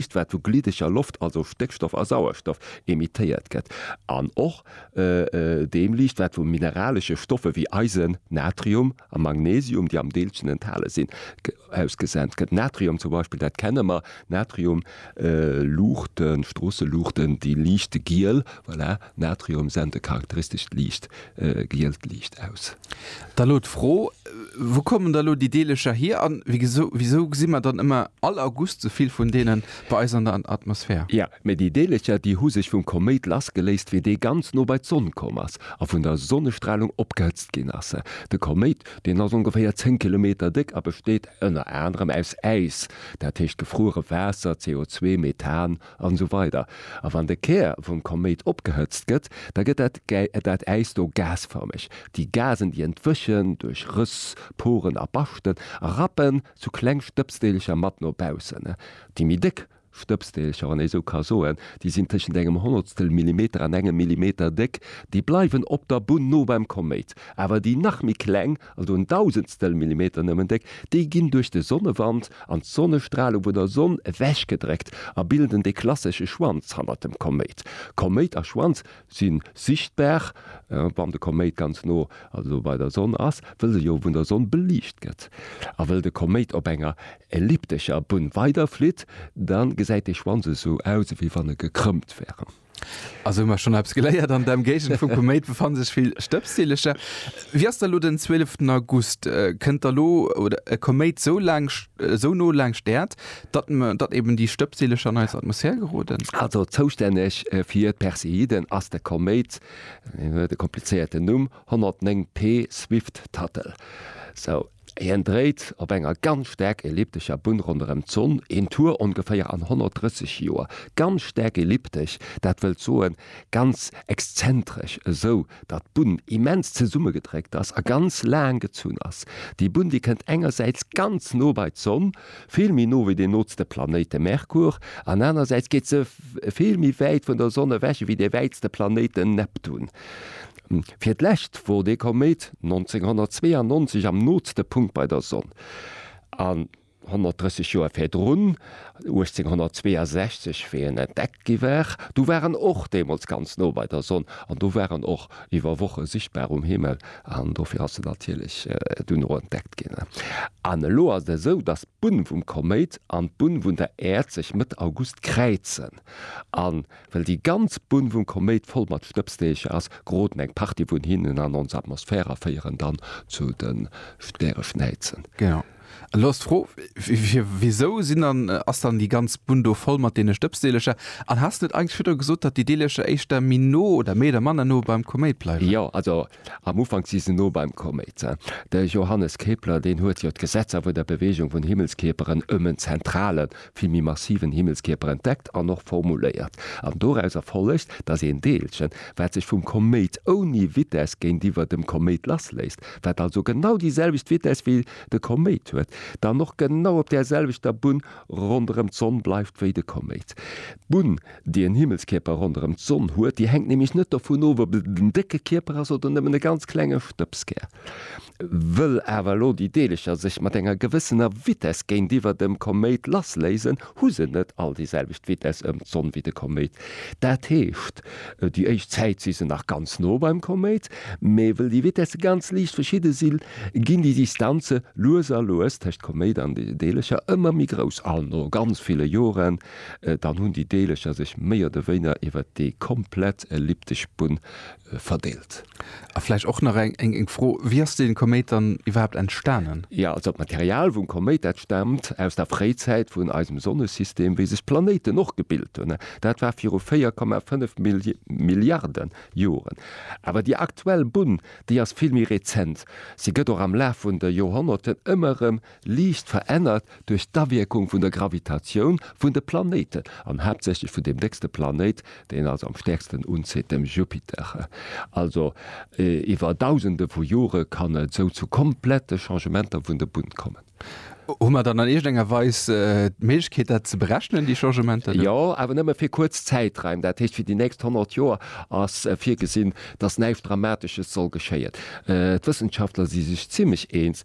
Iicht wat vu gliddeger Loft, also Stéckstoff a Sauerstoff, emittéiert gëtt, an och deem Liicht wat vu mineralesche Stoffe wéi Eisen, Natrium a Magnesium, déi am Deelchen enthale sinn, ausgesent gëtt. Natrium zum Beispill, dat kenne mer, Natriumluuchten, Stroosseluuchten, déi liichte giel, voilà. Natrium sent e charakteristescht liicht gielt Liicht aus. Da elo d'Fro, Wou kommen da elo déi Deelecher hier? A wisou gesi mer dann ëmmer all August sou vill vun deene bei eis an der Atmosphär? Jo, mee déi Deelecher, déi hu sech vum Koméit lassgeléist, wéi dee ganz no bei d'Sonn komm ass a vun der Sonnestralung opgehëtzt ginn ass. De Koméit, deen ass ongeféier 10 Kilometer déck a besteet ënner anerem aus Äis, dat heescht gefruere Waasser, CO2, Methan an esou weider A wann de Kär vum Koméit opgehëtzt gëtt, da gëtt dat dat Äis do gasfërmeg. Déi Gasen, déi entwëchen duerch Rëss, Poren a Baschten a rappen zu kleng Stëbsdeelecher mat no baussen. Déi méi déck Stëbsdeelecher, wann ee sou ka soen, déi sinn tëschent engem Honnertstel Millimeter an engem Millimeter déck, déi bleiwen op der Bunn no beim Koméit, awer déi nach méi kleng also en Dausendstel Millimeter nëmmen déck, déi ginn duerch de Sonnewand an d'Sonnestralung vun der Sonn ewechgedréckt a bilden de klassesche Schwanz hannert dem Koméit. Koméit a Schwanz si sichtbar, wann de Koméit ganz no, also bei der Sonn ass, wëll se jo vun der Sonn beliicht gëtt. A wëll de Koméit op enger elliptescher Bunn weiderflitt, da gesäit de Schwanz esou aus, ewéi wann e gekrëmmt wär. Also hu mer schonn eppes geléiert, an der Emgéigend vum Koméit befanne sech vill Stëbsdillercher. Wéi ass da lo den 12 August? Kënnt da lo e Koméit sou laang, sou no laanscht d'Äerd, datt, datt eben déi Stëbsdillercher an eis Atmosphär geroden? Also zoustänneg fir d'Perseiden ass de Koméit, hien huet e komplizéierten Numm, 109P Swift-Tuttle. Sou. Hien dréit op enger ganz staark elliptescher Bunn ronderëm d'Sonn, een Tour ongeféier an 130 Joer. Ganz staark elliptesch, dat wëllt soen ganz exzentresch, esou datt d'Bunn immens zesummegedréckt ass a ganz laang gezunn ass. Déi Bunn, déi kënnt engersäits ganz no bei d'Sonn, vill méi no wéi deen nootste Planéit, de Merkur, an anerersäits geet se vill méi wäit vun der Sonn ewech ewéi dee wäitste Planéit, den Neptun. Fir d'lescht wor dee Koméit 1992 am nooste Punkt bei der Sonn, an 130 Joer virdrun, 1862, wéi en entdeckt gi war, du war en och deemools ganz no bei der Sonn, an do war en och iwwer Woche sichtbar um Himmel, an dofir ass en natierlech duerno entdeckt ginn. An elo ass et esou, datt d'Bunn vum Koméit an d'Bunn vun der Äerd sech Mëtt August kräizen, an Well déi ganz Bunn vum Koméit voll mat Stëbsdeecher ass, geroden eng Partie vun hinnen an ons Atmosphär a féieren dann zu de Stäreschnäizen. Genau. Elo ass d'Fro, Wisou sinn dann, ass dann déi ganz Bunn do voll mat deene Stëbsdeelecher? An has de net eigentlech virdru gesot, datt déi Deelecher éischter méi no oder méi oder manner no beim Koméit bleiwen? Jo, also Am Ufank si se no beim Koméit. De Johannes Kepler, deen huet jo d'Gesetzer vun der Beweegung vun Himmelskierperen ëm en zentrale, vill méi massiven Himmelskierper entdeckt an och formuléiert. An dorauser follegt, datt een Deelchen, wat sech vum Koméit ouni Vitess géintiwwer dem Koméit lassléisst, wat also genau déi selwecht Vitess wéi de Koméit huet, dann och genau op där selwechter Bunn ronderëm d'Sonn bleift wéi de Koméit. D'Bunn. déi en Himmelskierper ronderëm d'Sonn huet, déi hänkt nämlech net dovun of, ob et en décke Kierper ass oder nëmmen e ganz klenge Stëbskär. Wëll awer elo déi Deelercher sech mat enger gewëssener Vitess géintiwwer dem Koméit lassléisen, hu se net all déi selwecht Vitess ëm d'Sonn wéi de Koméit. Dat heescht, déi éischt Zäit si se nach ganz no beim Koméit, mee wëll déi Vitesse ganz liicht verschidde sinn, ginn déi Distanze lues a lues tëscht Koméit an de Deelercher ëmmer méi grouss. An no ganz ville Joren, Dann hunn déi Deelecher sech méi oder wéiner iwwer déi komplett elliptesch Bunn verdeelt. A vläicht och nach eng Fro, Wéi ass dee Koméit dann iwwerhaapt entstanen? Jo, also d'Material vum Koméit, dat staamt aus der Fréizäit vun eisem Sonnesystem, wéi sech d'Planéiten och gebilt hunn. Dat war viru 4,5 Milliarde Joren. Awer déi aktuell Bunn, déi ass vill méi rezent. Si gëtt och am Laf vun de Joerhonnerten ëmmer erëm liicht verännert duerch d'Awierkung vun der Gravitatioun vun de Planéiten, an haaptsächlech vun deem déckste Planéit, deen en also am stäerksten unzitt, dem Jupiter. Also iwwer Dausende vu Jore kann et esou zu komplette Changementer vun der Bunn kommen. Hu mer dann an iergendenger Weis d'Méiglechkeet, dat ze berechnen, déi Changementer? Jo, awer nëmme fir kuerz Zäitraim, dat heescht fir déi nächst 100 Joer ass virgesinn, datt näischt Dramatesches soll geschéien. D'Wëssenschaftler si sech zimmlech eens,